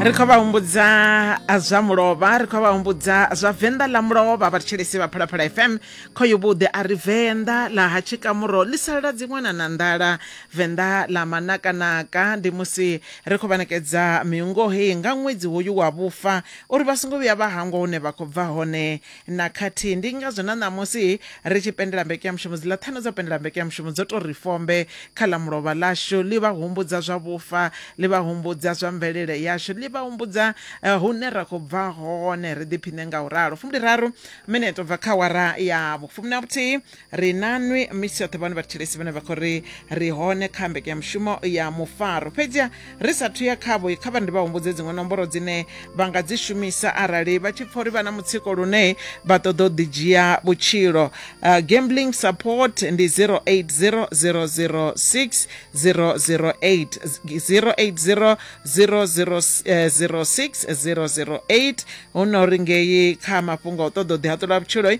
ri khou vha humbudza zwa mulovha ri khou vha humbudza zwa venḓa ḽa mulovha vhathetshelesi vha phalaphala fm khoyo vhuḓi a ri venḓa ḽa ha tshikamuro ḽi salala dziṅwe na na nḓala venḓa ḽa manakanaka ndi musi ri khou vha ṋekedza miungo heyi nga ṅwedzi hoyu wa vhufa uri vha songo vhuya vha hangwa hune vha khou bva hone na khathihi. Ndi ngazwo na ṋamusi ri tshi pendela mbekanyamushumo, dziḽa ṱhanu dza u pendela mbekanyamushumo dzo tou ri fombe kha ḽa mulovha ḽashu. Ḽi vha humbudza zwa vhufa, ḽi vha humbudza zwa mvelele yashu, ḽi vha humbudza hune ra khou bva hone, ri ḓiphiṋe nga u ralo. Fumbiliraru mineto u bva kha awara ya vhufumi na vhuthihi. ri na nwi misi yoṱhe vhone vhathetshelesi vhane vha khou ri ri hone kha mbekanyamushumo ya mufaro fhedziha ri sathu ya khavho kha vha ndi vha humbudze dziṅwe nomboro dzine vha nga dzi shumisa arali vha tshi pfa uri vha na mutsiko lune vha ṱoḓa u ḓidzhia vhutshilo uh, gambling support ndi 080006 008 080 006 008 hu no ri ngei kha mafhungo a u ṱoḓa u ḓihaṱula vhutshiloi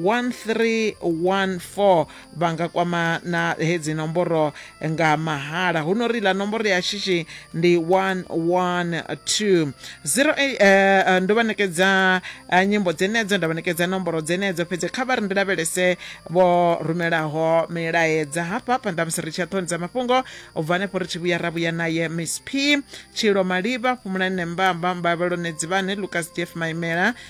1314 vha nga kwama na hedzi nomboro nga mahala hu no ri ḽa nomboro ya shishi ndi 112 0 eh, eh, ndo vha nekedza eh, nyimbo dzenedzo nda vha nekedza nomboro dzenedzo fhedzi kha vha ri ndi lavhelese vho rumelaho milaedza hafha hafha nda musi ri tshi ya ṱhoni dza mafhungo u bva hanefho ri tshi vhuya ra vhuya naye miss p tshilo malivha fhumulani nembamba mbavhelone dzivhane lucas jeff maimela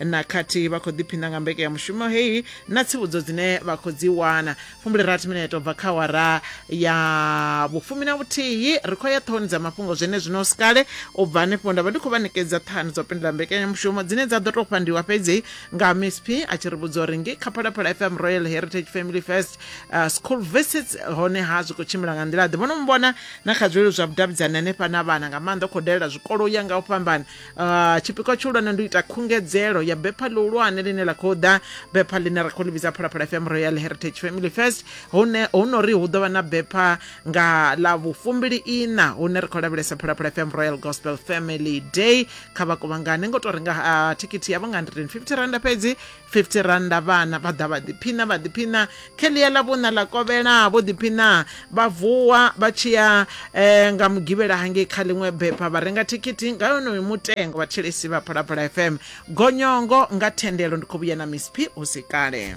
na khathihi vha khou ḓiphina nga mbeke ya mushumo heyi na tsivhudzo dzine vha khou dzi wana fumbule rathi mineto bva kha wara ya vhufumi na vhuthihi ri khou ya ṱhohoni dza mafhungo zwene zwino sikale u bva hanefho nda vha ndi khou vha ṋekedza ṱhani dzo pindula mbekanyamushumo dzine dza ḓo tou fhandiwa fhedzi nga msp a tshi ri vhudza uri ngei kha phalaphala fm royal heritage family first uh, school visits hone ha zwi khou tshimbila nga nḓila ḓe vhono mmbona na kha zwilelo zwa vhudavhidzani hanefha na vhana nga maanḓa u khou dalela zwikolo u ya nga u fhambana Uh, tshipikwa tshihulwane ndi u ita khungedzelo ya bepha ḽihulwane ḽine ḽa khou ḓa bepha ḽine ra khou ḽi vhidza phalaphala fm royal heritage family first hune hu no ri hu ḓo vha na bepha nga ḽa vhufumbili ina hune ri khou lavhelesa phalaphala fm royal gospel family day kha vha kuvhangane ngo tou renga uh, thikhithi yavho nga 150 randa fhedzi 50 rannda vhana vha ḓa vha ḓiphina vha ḓiphina kheḽia ḽa vhuna ḽa kovhela vho ḓiphina vha vuwa vha tshi ya eh, nga mugivhela hangei kha ḽiṅwe bepha vha renga thikhithi nga yonoyo mutengo vhathetshelesi vha phalaphala fm gonyongo nga thendelo ndi khou vhuya na miss p hu si kale